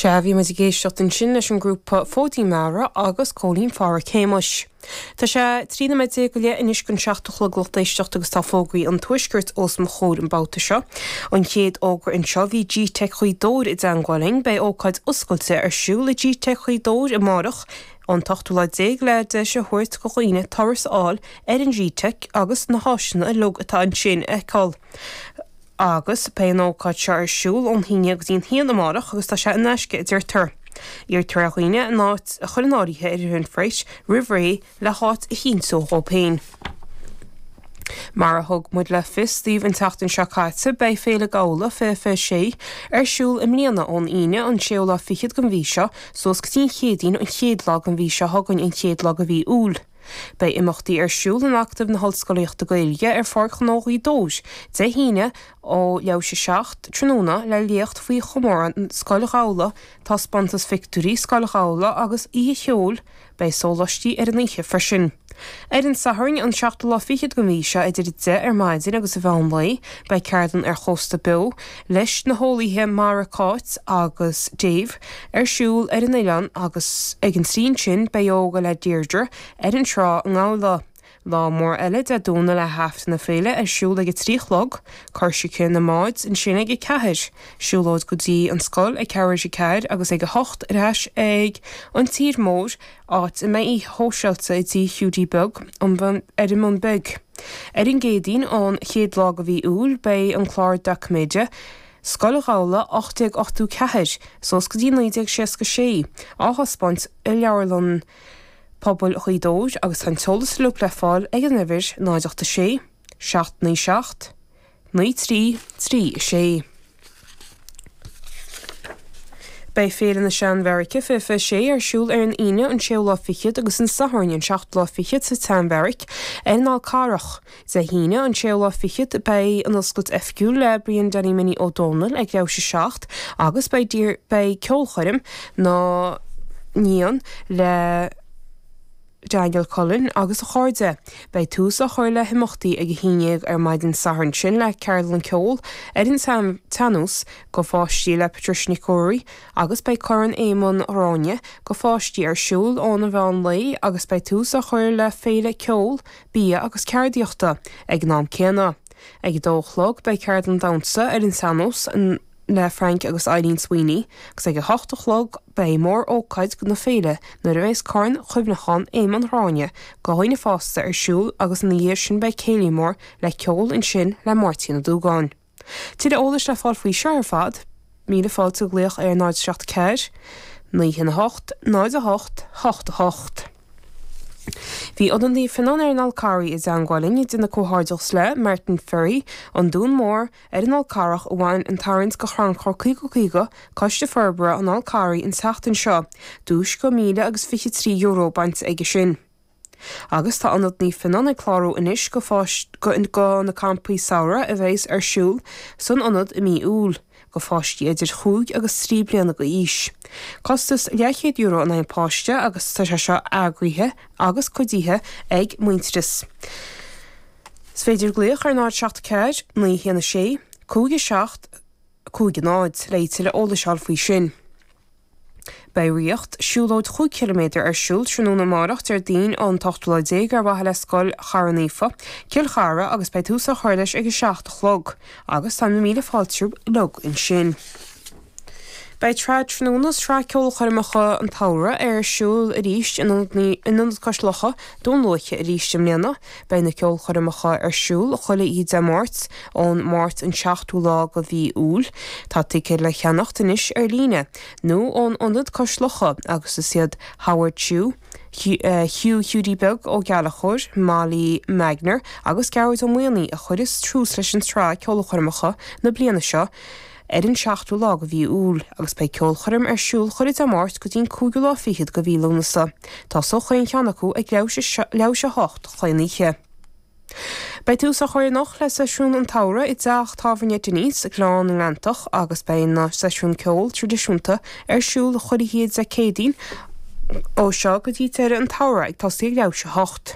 Sea, bhí muid ag éisteacht ansin leis an grúpa Fóidín Meara agus Cóilín Phádhraic Shéamais. Tá sé 13 nóiméad go leith anois chun a seacht a chlog, lucht éisteachta agus tá fógraí an Tuaiscirt os mo chomhair an babhta seo. An chéad fhógra anseo, bhí G-Teic Ghaoth Dobhair i dteangmháil linn, beidh ócáid oscailte ar siúl le G-Teic Ghaoth Dobhair amárach, an t-ochtú lá déag le deis a thabhairt go dhaoine turas a fháil ar an G-Teic agus na háiseanna uilig atá ansin a fheiceáil. agus beidh an ócáid seo ar siúl ón haon déag go dtí an haon amárach agus tá sé in aisce, a deirtear. Iarrtar ar dhaoine a n-áit a chur in áirithe ar Eventbrite roimh ré le háit a chinntiú dhóibh féin. Mar a thug muid le fios daoibh an tseachtain seo caite, beidh Féile Gabhla 20 26 ar siúl i mbliana ón Aoine an séú lá fichead den mhí seo suas go dtí an Chéadaoin an chéad lá den mhí seo chugainn, an chéad lá de mhí Iúil. Beidh imeachtaí ar siúl in Acadamh na hOllscolaíochta Gaeilge ar Pháirc Ghnó Ghaoth Dobhair Dé hAoine ó leathuair tar éis a 7 tráthnóna le léacht faoi chomóradh Scoil Ghabhla, taispeántas phictiúirí Scoil Ghabhla agus oíche cheoil. Beidh sólaistí ar an oíche freisin. Ar an Satharn an seachtú lá fichead den mhí seo idir a 10 ar maidin agus a mheán lae beidh ceardlann ar Chósta Beo, leis na heolaithe mara Cáit agus Dave ar siúl ar an oileán agus ag an trí ansin beidh ióga le Deirdre ar an trá i nGabhla. Lá mór eile Dé Domhnaigh le hAifreann na Féile ar siúl ag a trí a chlog, coisreacan na mbád ansin ag a ceathair, siúlóid go dtí an scoil ag leathuair tar éis a ceathair agus ag a hocht ar ais ag an tír mór, áit a mbeidh oíche shóisialta i dTigh Hiúdaí Beag ar an mBun Beag. Ar an gCéadaoin an chéad lá de mhí Iúil beidh an clár doiciméide, Scoil Ghabhla 1884 suas go dtí 1966, á thaispeáint i Leabharlann Pobail Ghaoth Dobhair agus tá an t-eolas uilig le fáil ag an uimhir 086 797 9 3 3 6 Beidh Féile na Sean-Bheairice 20 26 ar siúl ar an Aoine an séú lá fichead agus an Satharn an seachtú lá fichead sa tSean-Bheairic ar an Fhál Carrach. Dé hAoine an séú lá fichead beidh an oscailt oifigiúil le Brian Danny Minnie Ó Dónaill ag leathuair tar éis a 7 agus beidh beidh ceolchoirm ina dhiaidh sin le Daniel Cullen agus a chairde. Beidh tús á chur le himeachtaí ag a haon déag ar maidin Sathairn ansin le ceardlann ceoil ar an tsean-nós go pháistí le Patricia Nic Ruairí agus beidh Corn Éamonn Ghráinne go pháistí ar siúl óna mheán lae agus beidh tús á chur le féile ceoil, bia agus ceardaíochta ag an am céanna. Ag a dó a chlog beidh ceardlann damhsa ar an tsean-nós, le Frank agus Eileen Sweeney, agus ag a hocht a chlog beidh mór-ócáid na féile nuair a bheas Corn Chuimhneacháin Éamonn Ghráinne do dhaoine fásta ar siúl agus ina dhiaidh sin beidh céilí mór le ceol ansin le Máirtín Ó Dúgáin. Tuilleadh eolais le fáil faoi seo ar fad, míle fáilte ag glaoch ar 0 7 4 9 1 8 0 8 8 8. Bhí Odán Díophinoin ar an Fhalcarraigh i dteangmháil linn, ag déanamh comhghairdeachas le, Martin Ferry, An Dún Mór, Ar an Fhál Carrach a bhain an tarraingt go crannchur 50 50 Coiste Forbartha an Fháil Charraigh an tseachtain seo, duais go míle agus fiche trí euro bainte aige sin. Agus tá Ionad Naomh Fíonán ag clárú anois go go na campaí samhraidh a bheas ar siúl san Ionad i mí Iúil, go pháistí idir chúig agus trí bliana déag d'aois. Costas leathchéad euro in aghaidh páiste agus tá sé seo eagraithe agus cuidithe ag Muintearas. Is féidir glaoch ar 074 916 5750 le tuilleadh eolais a fháil faoi sin. Beidh Ríocht, siúlóid cúig chiliméadar ar siúl tráthnóna amárach, Déardaoin, an t-ochtú lá déag ar mhaithe le Scoil Chartha Naofa, Cill Chartha agus beidh tús á chur leis ag a seacht a chlog agus tá míle fáilte romhat ansin. Beidh Trad Tráthnóna, sraith ceolchoirmeacha an tsamhraidh, ar siúl arís in Ionad Cois Locha, Dún Lúiche arís i mbliana. Beidh na ceolchoirmeacha ar siúl chuile oíche Dé Máirt, ón Máirt an 7ú lá de mhí Iúil. Tá ticéid le ceannacht anois ar líne, nó ón Ionad Cois Locha, agus is iad Howard Chu, Hugh Hiúdaí Beag Ó Gallchóir, Molly Magner agus Gearóid Ó Maonaigh a chuirfidh tús leis an tsraith ceolchoirmeacha na bliana seo. ar an seachtú lá go mhí Iúil agus beidh ceolchoirm ar siúl chuile Dé Máirt go dtí'n cúigiú lá fichead go mhí Lúnasa. Tosóidh achan cheann acu ag leath i ndéidh a hocht achan oíche. Beidh tús á chur anocht le Seisiún an tSamhraidh i dteach tábhairne Dinny's i nGleann na nGleanntach agus beidh na seisiúin ceol tradisiúnta ar siúl chuile Dé Céadaoin ó seo go dtí deireadh an tsamhraidh ag toiseacht ag leath i ndéidh a hocht.